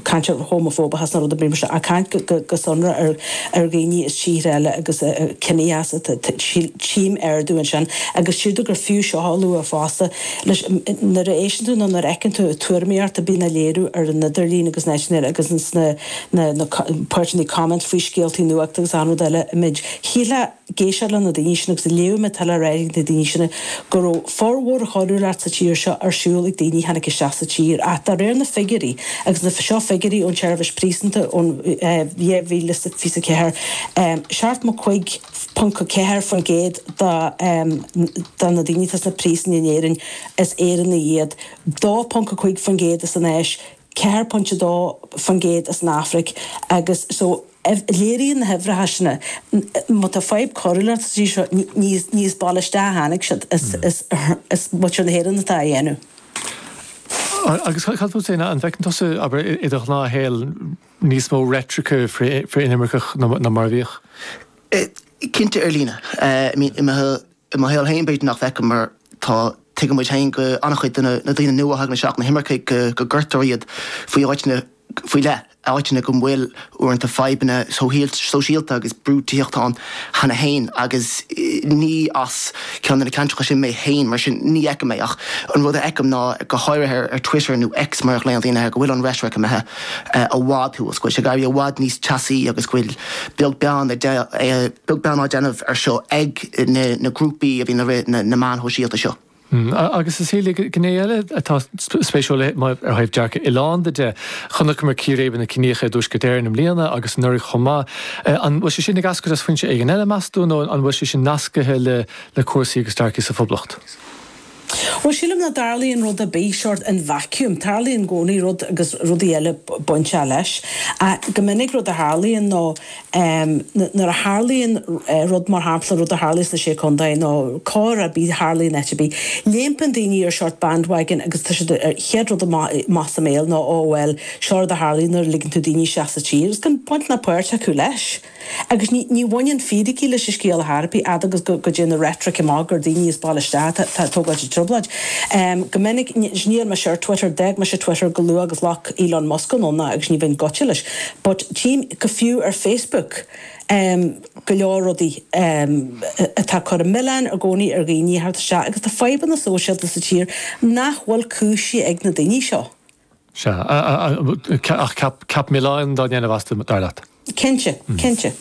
cainteoir homafóbach agus na rudaí a mbíonn muid a' caint go sonrath ar dhaoine is tíortha eile agus ciníochas atá ag ardú ansin agus sílim gur fiú seo a lua fosta leis nuair a éisteann tú nó nuair a fheiceann tú tuairimíocht a bhíonn á léiriú ar an idirlíon agus na nótaí agus na páirteanna comment faoi scéaltaí nuachta agus aon rud eile a mbímid. Shílfeá. Dá n-éistfeá leis na daoine sin agus dá léifeá tuairimí na daoine sin go raibh formhór na coiriúlachta sa tír seo ar siúl ag daoine a tháinig isteach sa tír ach de réir na figiúirí agus seo figiúirí ón tseirbhis phríosúnachta ón dhá mhíle is fiche a 4 75.4% de na daoine atá sna príosúin in Éirinn is Éireannaigh iad 2.5% as an Áis 4.2% as an Afraic agus so Léiríonn na huimhreacha sin, má tá fadhb coiriúlachta sa tír seo, ní as baile isteach a tháinig siad, is muintir na hÉireann atá á dhéanamh. Agus cad fút féin, an bhfeiceann tusa, abair, i do ghnáthshaol, níos mó reitrice frith-inimirceach ná mar a bhíodh? Cinnte, ar líne. I mo shaol féin b'fhéidir nach bhfeicim mar tá, tuigimid féin go an-chuid de na daoine nua a thagann isteach, na himircigh, go gcuirtear iad in áiteanna, faoi leith, áiteanna go bhfuil uaireanta fadhbanna sóisialta agus bochtaineacht ann cheana féin agus ní as ceann de na ceantracha sin mé féin, mar sin ní fheicim é ach an rud a fheicim ná, go háirithe ar Twitter nó X mar a ghlaonn daoine air, go bhfuil an reitric imithe i bhfad thar fóir, go bhfuil sé ag éirí i bhfad níos teasaí agus go bhfuil beag de bheagán á déanamh ar seo ag na grúpaí a bhíonn i rith na meán sóisialta seo. Hm, agus a Shelia, gné eile atá spéisiúil ó thaobh dearcadh oileánda de, chonaiceamar círéibeanna ciníocha i dTuaisceart Éireann i mbliana agus anuraidh chomh maith. An bhfuil sé sin ag eascairt as foinse éigin eile, meas tú, nó an bhfuil sé sin nascaithe le cúrsaí agus dearcadh sa Phoblacht? Bhuel, sílim nach dtarlaíonn rud ar bith sort in vacuum. Tarlaíonn i gcónaí rud agus rudaí eile bainteach leis. Ach go minic rud a tharlaíonn ná em, nuair a tharlaíonn rud mar shampla, rud a tharlaigh sna Sé Contae nó coir ar bith a tharlaigh in áit ar bith, léimeann daoine ar sort bandwagon agus tá siad ar, chéad rud amach, amach as a mbéal ná oh well, seo rud a tharlaigh nuair a ligeann tú daoine isteach sa tír agus gan baint ná páirt acu leis. Agus ní, ní bhaineann fíricí leis an scéal ar chor ar bith, fhad agus go, go dtéann an reitric amach gur daoine as baile isteach atá, atá ag tógáilt an trioblóid. Em, go minic, ní, níl mise ar Twitter, d'fhág mise Twitter go luath agus a ghlac Elon Musk anonn agus ní bheinn gaibhte leis. But tchím go fiú ar Facebook go leor rudaí atá ag cur an milleáin i gcónaí ar dhaoine thar tír isteach agus tá fadhbanna sóisialta sa tír nach bhfuil cúisithe ag na daoine seo. Sea. Ach ceap milleáin á dhéanamh astu, dar leat? Cinnte. Cinnte.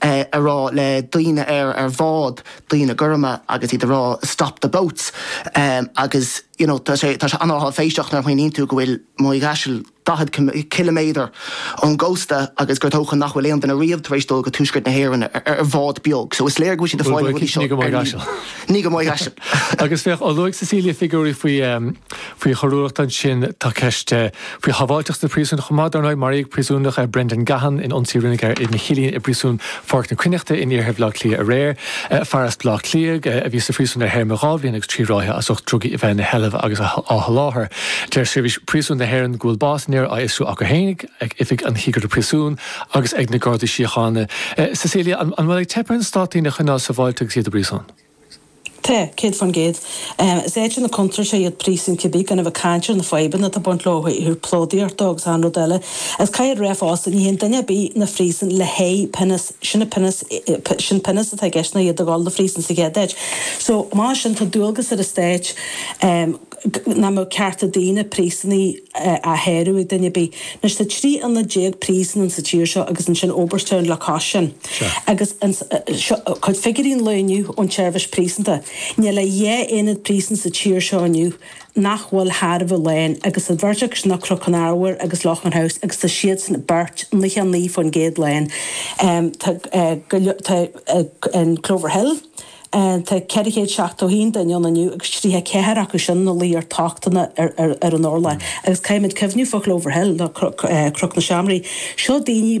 é a rá le daoine ar ar bhád, daoine gorma agus iad a rá stop the boats agus you know tá tá sé an-áiféiseach nuair a smaoiníonn tú go bhfuil Maigh Chaisil daichead ciliméadar ón gcósta agus gur dócha nach bhfuil aon duine riamh tar éis dul go Tuaisceart na hÉireann ar bhád beag so is léir go bhfuil siad ag fáil na rudaí seo ar líne. Ní go Maigh Chaisil. Agus féach, luaigh Cecilia figiúirí faoi. Faoi choiriúlacht ansin tá ceist faoi shábháilteacht sna príosúin chomh maith. Dar ndóigh, maraíodh príosúnach, Brendan Gahan, in ionsaí a rinneadh air ina chillín i bPríosún Pháirc na Cruithneachta in iarthar Bhaile Átha Cliath aréir. Fear as Baile Átha Cliath a bhí sa phríosún ar théarma dhá bhliain agus trí ráithe as ucht drugaí a bheith ina sheilbh agus á sholáthar. Deir Seirbhís Príosúin na hÉireann go bhfuil bás an fhir á fhiosrú acu féin, ag Oifig an Chigire Príosún agus ag na Gardaí Síochána. Cecilia, an bhfuil ag teip ar an Stát daoine a choinneáil sábháilte agus iad i bpríosún? Tá, céad fán gcéad. Is áiteanna contúirteacha iad príosúin cibé gan a bheith ag caint ar na fadhbanna atá ag baint leo, leofa tá plódaíocht dó agus achan rud eile. Agus caithfear a rá fosta, ní théann duine ar bith 'na phríosúin le haghaidh pionós, sin an pionós, sin pionós atá i gceist ná iad a dhul 'na phríosúin sa chéad áit. So, mar sin tá dualgas ar an Stát, nach mbeadh cearta daoine, príosúnaigh, á shárú ag duine ar bith. Anois tá trí aonad déag príosúin sa tír seo agus ansin Oberstown le cois sin. Agus an, seo cuid figiúirí an lae inniu ón tSeirbhis Príosúnachta. Níl ach dhá aonad príosúin sa tír seo inniu nach bhfuil thar a bheith lán agus an bheirt acu sin ná Cnoc an Arbhair agus Loughan House agus tá siadsan beirt, 99% lán. Tá go leor, tá an Clover Hill. Tá 471 duine ann inniu agus 34 acu sin ina luí ar tochtanna ar an urlár. Agus caithfimid cuimhniú fá Chlover Hill, nó Cnoc na Seimre. Seo daoine,